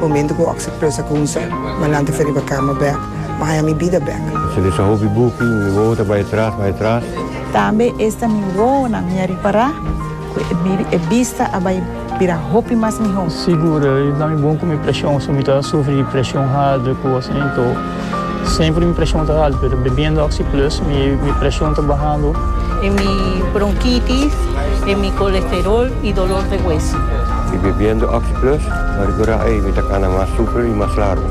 Momento cu oc sa closa cu un ser, Malante fe riba cama bek, Ma haya mi bida bek. Sa lesa hopi buki, mi wowo ta bay atras, bay atras. Tambe esta mi wowonan mi a ripara cu e bista a bay bira hopi mas miho. Sigur, i na mi bon cu mi presion, so mi ta sufri di presion harder cu oconan. Entou. Semper mi preshon ta haltu pero bebiendo oxi plus mi preshon ta bahando. E mi bronkitis e mi kolesterol i dolor de hueso. Mi bebiendo oxi plus a rekurá ei mi ta kana mas super i mas largu.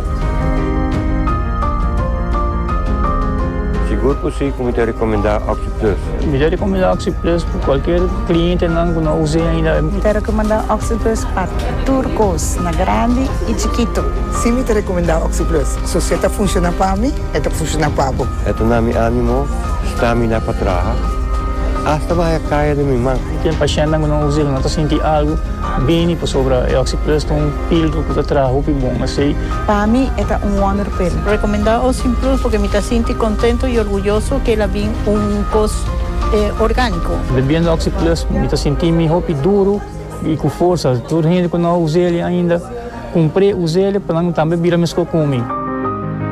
Sigur ku si ku mi ta rekomendá oxi plus. Mi ta rekomendá oxi plus pa kualker klientenan ku no us'é ainda. Mi ta rekomendá oxi plus pa tur kos na grandi i chikitu. Si mi ta rekomendá Oxyplus, so si e ta funshoná pa mi, e ta funshoná pa bo. E ta na mi ánimo, stamina pa traha, asta pa haya kaya den mi man. Di ken pashentenan ku no usa el, no ta sinti algu bini pasobra e Oxyplus ta un píldora ku ta traha hopi bon. Asei. Pa mi e ta un wonder pil. Rekomendá Oxyplus purke mi ta sinti kontento i orguyoso ku el a bin un kos orgániko. Bebiendo Oxyplus mi ta sinti mi hopi duru. I ku forsa tur hende ku no a usa el ainda, kumpr'é, usa el pa nan tambe bira meskos ku mi.